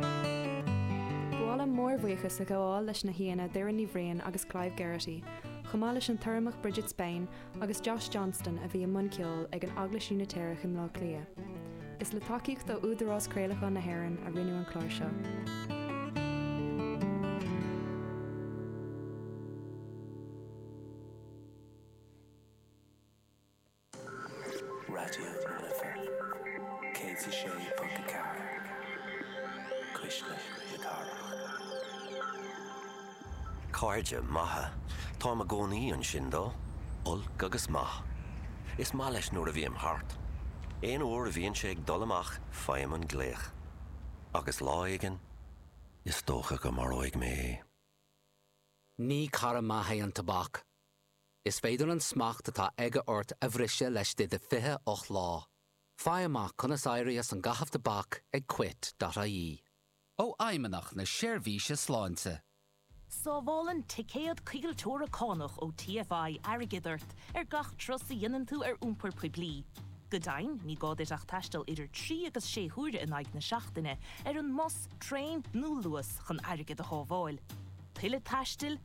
Ba mhaith liom mórbhuíochas a ghabháil leis na haíonna Doireann Ní Bhriain agus Clive Geraghty, chomh maith leis an tUrramach Bridget Spain agus Josh Johnston a bhí i mbun ceoil ag an Eaglais Úinitéireach i mBleá Cliath. Is le tacaíocht ó Údarás Craolacháin na hÉireann a rinneadh an clár seo. Raidió na Life 106.4, cuisle na cathrach. Cairde maithe, táim i gcónaí ansin dó, olc agus maith. Is maith leis nuair a bhím thart. Aon uair a bhíonn sé ag dul amach faighim an glaoch. Agus lá éigin, is dócha go maróidh mé é. Ní cara maith é an tobac, Is féidir an smacht atá aige ort a bhriseadh le Stad 28 lá. Faigh amach conas éirí as an gcaitheamh tobac ag Quit.ie. Ó Fheidhmeannach na Seirbhíse Sláinte. Sábhálann Ticéad Coigilteora Cánach ó TFI airgead ort ar gach turas a dhéanann tú ar iompar poiblí. Go deimhin, ní gá duit ach taisteal idir trí agus sé huaire in aghaidh na seachtaine ar an mbus, traein nó Luas chun airgead a shábháil. Tuilleadh taistil?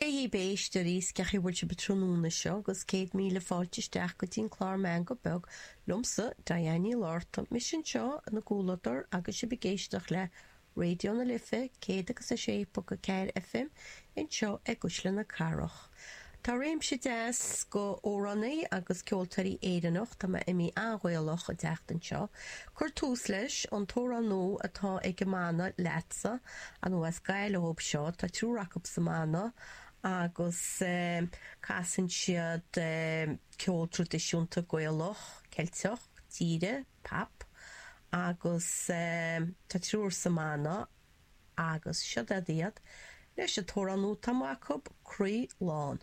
Dia dhaoibh, bígí istigh, is cén chaoi a bhfuil sibh tráthnóna seo agus céad míle fáilte isteach go dtí an clár Meangadh Beag liomsa, Diane Ní Fhlatharta, mise anseo in bhur gcomhluadar agus sibh ag éisteacht le Raidió na Life 100 agus 6.4 FM anseo i gCuisle na Cathrach. Tá réimse deas de amhránaí agus ceoltóirí Éireannach, tá mé i mí an-Ghaelach, ag teacht anseo Cuir tús leis an t-amhrán nua atá ag an mbanna LETSA, anuas as Gaillimh iad seo. Tá triúr acu sa mbanna agus casann siad ceol traidisiúnta Gaelach, Ceilteach, tíre, pap agus tá triúr sa mbanna agus seo iad iad leis an t-amhrán nua atá amuigh acu, Croí Lán.